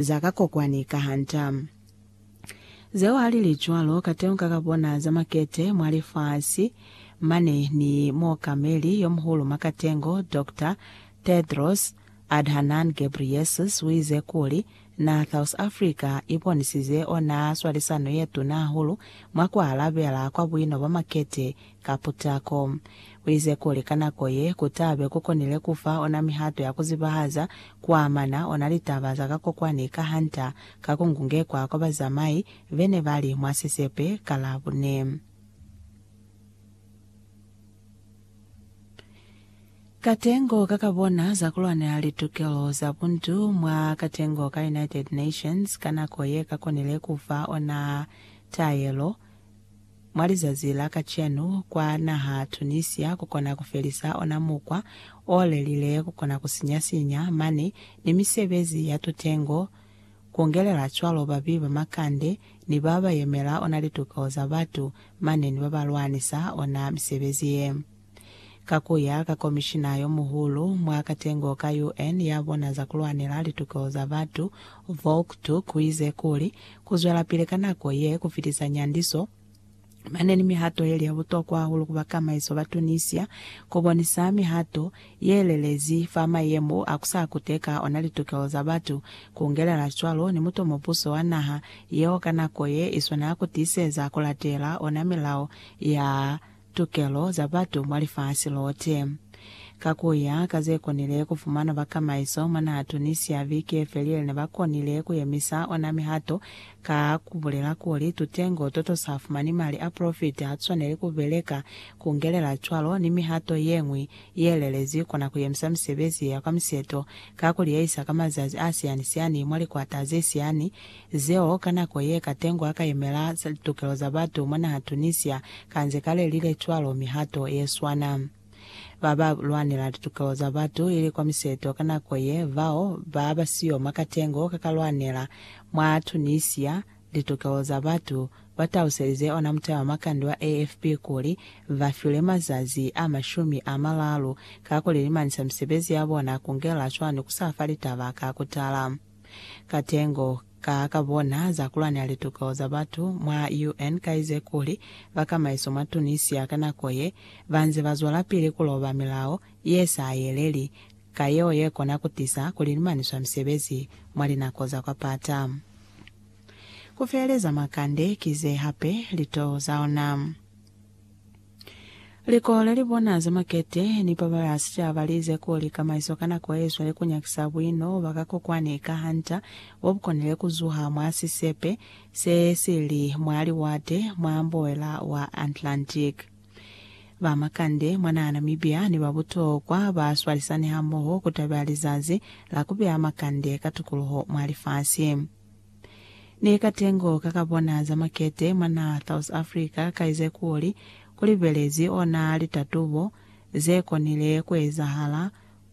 za ka kokwani ka hanta. Zeo ha li li cwalo, kateunga ka bona za makete mwa lifasi mane ni muokameli yo muhulu mwa katengo, Doctor Tedros Adhanan Ghebreyesus uize kuli, Na South Africa i bonisize ona swalisano ye tuna hahulu mwa ku alabela kwa buino bwa makete Ka putako, uize kuli ka nako ye, kutabe kukonile kufa ona mihato ya kuzibahaza kuamana ona litaba za ka kokwani ka Hunter ka kungungekwa kwa bazamai bene bali mwa sisepe ka Labune. Katengo ka kabona za kulwanela litukelo za buntu mwa katengo ka United Nations ka nako ye kakonile kufa ona taelo Mwa lizazi la kacenu, kwa naha Tunisia, ku kona ku felisa ona mukwa o lelile ku kona ku sinya-sinya mani ni misebezi ya tutengo, ku ngelela cwalo babi ba makande ni ba ba yemela ona lituko za batu mane ni ba ba lwanisa ona misebezi ye. Ka ku ya ka Komishina yo Muhulu mwa Katengo ka UN ya bona za ku lwanela litokelo za batu, Volker Turk uize kuli, Ku zwelapili ka nako ye ku fitisa nyandiso mane ni mihato yeli ya butokwa hahulu ku bakamaiso ba Tunisia ku bonisa mihato ye lelezi fa mayemo a ku sa kuteka ona litokelo za batu, ku ngelela cwalo ni muto mubuso wa naha yeo ka nako ye i swana ku tiiseza ku latela ona milao ya tukelo za batu mwa lifasi lote. Ka ku ya ka ze konile ku fumanwa bakamaiso mwa naha Tunisia, viki ye felile ne ba konile ku yemisa ona mihato ka ku bulela kuli tutengo to to sa fumani mali a profiti ha tu swaneli ku beleka ku ngelela cwalo ni mihato ye ñwi ye lelezi kona ku yemisa misebezi ya kwa miseto ka ku liyeyisa ka mazazi a siani-siani mwa likwata ze siani Zeo ka nako ye Katengo a ka yemela za litokelo za batu mwa naha Tunisia ka nze ka lelile cwalo mihato ye swana. Ba ba lwanela litokelo za batu ili kwa miseto ka nako ye bao ba ba siyo mwa Katengo ka ka lwanela mwa Tunisia litokelo za batu ba taluselize ona mutaba makande wa AFP kuli ba fiwe mazazi a mashumi a malalu ka ku lilimanisa misebezi ya bona ku ngela cwani ku sa fa litaba ka ku tala. Katengo ka ka bona za kulwanela lituko za batu mwa UN ka ize kuli bakamaiso mwa Tunisia ka nako ye ba nze ba zwelapili ku loba milao ye sa yeleli ka yeo ye kona ku tisa ku lilimaniswa misebezi mwa linako za kwa pata. Ku feeleza makande ki ze hape lito za ona. Likole li bona za makete ni ba ba ya sicaba li ize kuli kamaiso ka nako ye cwale ku nyakisa buino bwa ka kokwani ka hanta bo bu konile ku zuha mwa sisepe se si li mwa liwate mwa mboela wa Atlantic. Ba makande mwa naha Namibia ni ba butokwa ba swalisani hamoho ku tabela lizazi la ku beya makande ka tukuluho mwa lifasi. Ni ka tengo ka ka bona za makete mwa naha South Africa ka ize kuli ku libelezi ona litatubo ze konile ku ezahala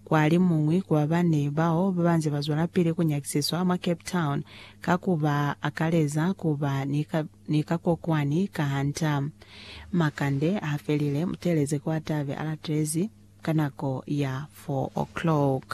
kwa li muñwi ku ba bane bao ba banze ba zwelapili ku nyakisiswa mwa Cape Town ka ku ba akaleza ku ba ni ka kokwani ka hanta. Makande ha felile, mu teeleze ku atabe a latelezi ka nako ya 4 o'clock.